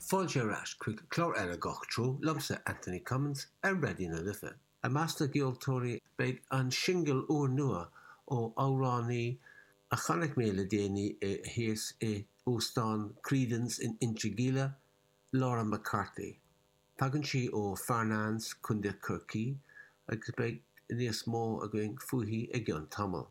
Fáilte ar ais chuig clár eile Gach Treo liomsa, Anthony Cummins, ar Raidió na Life. I measc na gceoltóirí beidh an singil úrnua ó amhránaí a chonaic mé le déanaí í thíos i Óstán Creedon's in Inchigeela, Laura McCarthy. Tagann sí ó Farnanes, Contae Chorcaí agus beidh níos mó againn fúithi i gceann tamaill.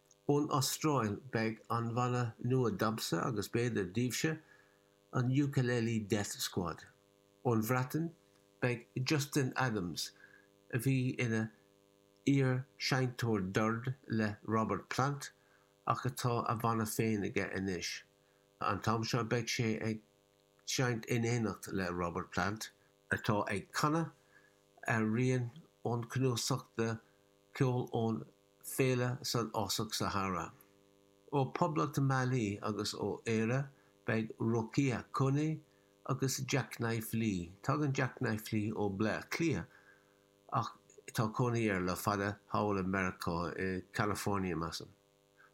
Ón Astráil, beidh an bhanna nua domsa agus b'fhéidir daoibhse, an Ukulele Death Squad. Ón Bhreatain, beidh Justin Adams, a bhí ina iar-seinnteoir doird le Robert Plant ach atá a bhanna féin aige anois. An t-am seo beidh sé ag seinnt in éineacht le Robert Plant, atá ag canadh ar rian ón cnuasach de cheol ón Féile san Fhásach Sahara. Ó Poblacht Mali agus ó Éire beidh Rokia Koné agus Jacknife Lee. Tagann Jacknife Lee ó Bleá Cliath ach tá cónaí air le fada thall i Meiriceá, i California measaim.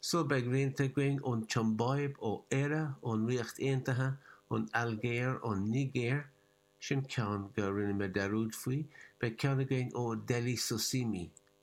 Só beidh rianta againn ón tSiombáib, ó Éire, ón Ríocht Aontaithe, ón Ailgéir, ón Nigéir, sin ceann go rinne mé dearúd faoi, beidh ceann againn ó Dele Sosimi,